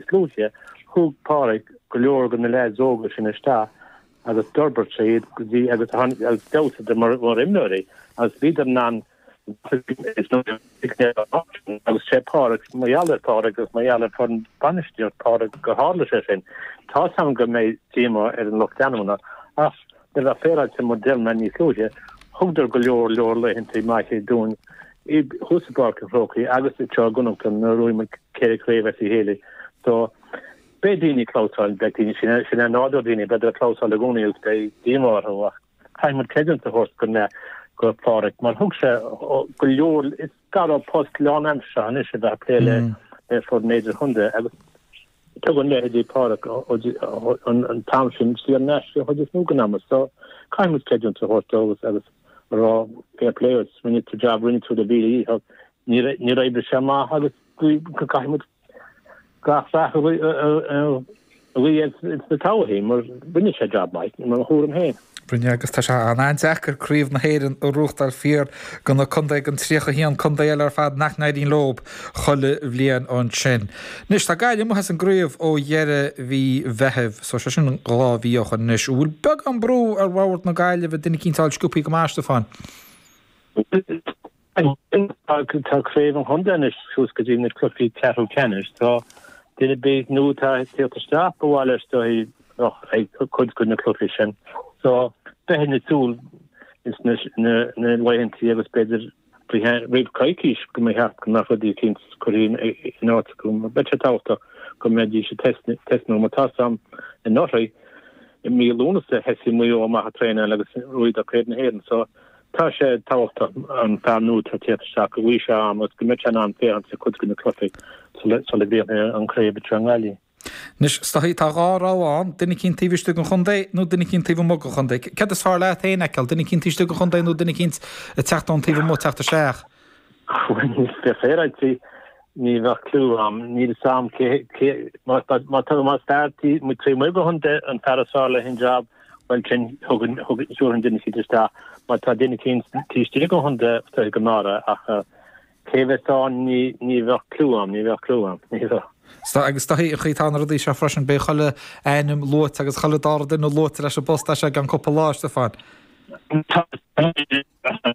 Is luaithe, thug Páraic go leor de na leaids óga sin isteach agus d'fhorbairt sé iad go dtí agus tháinig agus d'fheabhsaigh mar imreoirí agus bhíodar in ann agus sé Páraic mar gheall ar Páraic agus mar gheall ar foireann bainistíocht Páraic gur tharla sé sin. Tá a fhios agam go mbeidh díomá ar an lucht leanúna ach Le bheith féaráilte mar a dúirt mé níos luaithe, thugadar go leor leor laethanta maithe dúinn thuas i bPáirc an Chrócaigh agus anseo i gConnachta nuair a bhuaigh muid ceithre chraobh as a chéile so beidh daoine ag clamhsáil, beidh daoine, sin é nádúr daoine, b'fhéidir ag clamhsáil i gcónaí agus beidh díomá orthu ach caithfidh muid creidiúint a thabhairt go mbeadh do Pháraic mar thug sé go leor, is geall le post lánaimseartha anois a bheith ag plé le le foireann idirchontae agus Tugann leithéidí Pháraic an t-am sin saor in aisce an chuid is mó den am so caithfidh muid creidiúint a thabhairt dóibh agus a rá fair play dhuit, rinne tú jab, rinne tú do mhíle dhícheall, níor oibrigh sé amach agus caithfidh muid gach rath a ghuí air sa todhchaí mar rinne sé jab maith, i mo thuairim féin. Rinne agus tá sé an-deacair craobh na hÉireann a ghnóthachtáil, fiafraigh de na contae, den 31 contae eile ar fad nach n-éiríonn leo chuile bhliain ansin. Anois tá Gaillimh amuigh as an gcraobh ó dheireadh mhí Mheithimh so sé sin dhá mhí ó shoin anois. An bhfuil beagán brú ar bhord na Gaillimhe duine eicínt a fháil sciopthaí go maith, a Stiofáin? Ansin, tá craobh an chontae anois suas go dtí na cluichí ceathrú ceannais. So duine ar bith nua atá ag teacht isteach, ba mhaith leis is dóigh a bheith ag cuid de na cluichí sin. So bheadh duine ag súil sna laethanta agus b'fhéidir roimh coicís go mbeadh ceacht go mbeadh rud eicínt curtha in áit acu. Beidh sé tábhachtach go mbeidís ag tosnú mar tá a fhios agam anuraidh i mí Lúnasa, thosaigh Maigh Eo amach ag traenáil agus bhuadar Craobh na hÉireann. So Tá sé tábhachtach an fear nua atá ag teacht isteach go bhfaighidh sé am agus go mbeidh sé in ann féachaint ar chuid de na cluichí sula dtéann sé an craobh atá i nGaillimh. Anois is dóichí tá dhá rogha ann, duine eicínt taobh istigh den chontae nó duine eicínt taobh amuigh den chontae. Céard is fearr leat féin a fheiceáil, duine eicínt istigh den chontae nó duine eicínt ag teacht ón taobh amuigh teacht isteach? Coinneoidh mé féin ag tí, ní bheadh cliú agam, níl 's agam cé, cé, más, más tá, más fear taobh amuigh, taobh amuigh den chontae an fear is fearr le haghaidh an jab, bhuel sin, thugann, thugann, thabharfainn duine eicínt isteach, má tá duine eicínt taobh istigh den chontae, is dóichí go mb'fhearr é, ach cé a bheas ann, ní, ní bheadh cliú agam, ní bheadh cliú agam, ní bheadh. Sea, agus is dóichí an chaoi atá na rudaí seo freisin, beidh chuile ainm luaite agus chuile dara duine luaite leis an bpost as seo go ceann cúpla lá, a Stiofáin. Tá, tá, tá.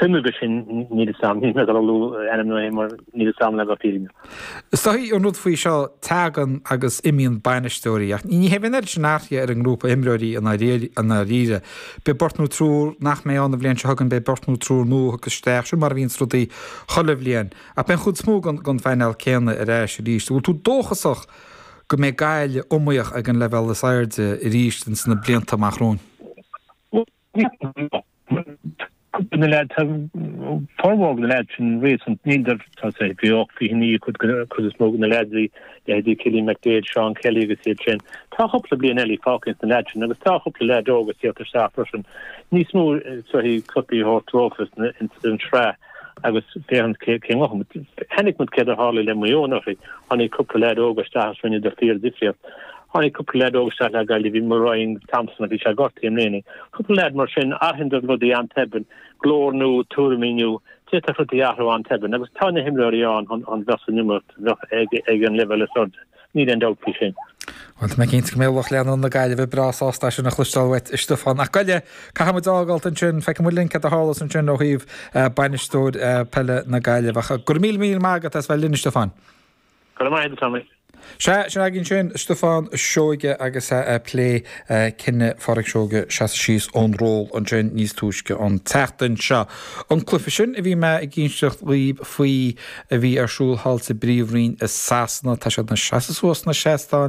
Tuigim, go sin, níl a fhios agam le dul ag lua ainmneacha mar níl a fhios agam leis an fhírinne. Is dóigh an rud faoi seo, teagann agus imíonn bainisteoirí ach ní bheidh an oiread sin athruithe ar an ngrúpa imreoirí i ndáiríre. Beidh beirt nó triúr nach mbeidh ann an bhliain seo chugainn, beidh beirt nó triúr nua tugtha isteach, sin mar a bhíonns rudaí chuile bhliain. Ach beidh an chuid is mó den phainéal céanna ar ais arís. An bhfuil tú dóchasach go mbeidh Gaillimh iomaíoch ag an leibhéal is airde arís ins na blianta amach romhainn? Cuid de na leaids, formhór na leaids sin réasúnta, níl siad, tá siad 28, 29 cuid, cuid is mó de na leaids, bhí leithéidí Cillian McDaid, Seán Kelly agus iad sin. Tá cúpla bliain eile fágtha ins na leaids sin agus tá chúpla leaid óg ag teacht isteach freisin. Níos mó, sort of cluichí a thabhairt dóibh ins an sraith. agus féachaint cé cén chaoi a ngabhfaidh. But chonaic muid céard a tharla le Maigh Eo anuraidh. Tháinig cúpla leaid óga isteach agus rinneadar fíordhifríocht. Tháinig cúpla leaid óga isteach le Gaillimh, bhí muid ag braith ar Thompson agus bhí sé gortaithe i mbliana. Cúpla leaid mar sin, athraíonn siad rudaí an-tobann, glór nua, tuairimí nua, d'fhéadfadh rudaí a athrú an-tobann. Agus tá na himreoirí ann chun chun bheith san iomaíocht, bheith ag ag an leibhéal is airde. Níl aon dabht faoi sin. Bhuel, tá mé cinnte go mbeidh lucht leanúna na Gaillimhe breá sásta é sin a chloisteáil uait, a Stiofáin. Ach gabh i leith, caithfimid a fhágáilt ansin. Feicfidh muid linn cad a tharlós ansin ó thaobh bainisteoir peile na Gaillimhe. Ach go raibh míle míle maith agat as bheith linn, a Stiofáin. Go raibh maith agat, Tommy. Sea, sin againn ansin Stiofán Seoige agus é ag plé cinneadh Phádraig Seoige seasamh síos ón ról ansin níos túisce an tseachtain seo. An cluiche sin a bhí mé ag inseacht dhaoibh faoi, a bhí ar siúl thall sa bpríomhroinn i Sasana, tá siad ina seasamh suas sna seastáin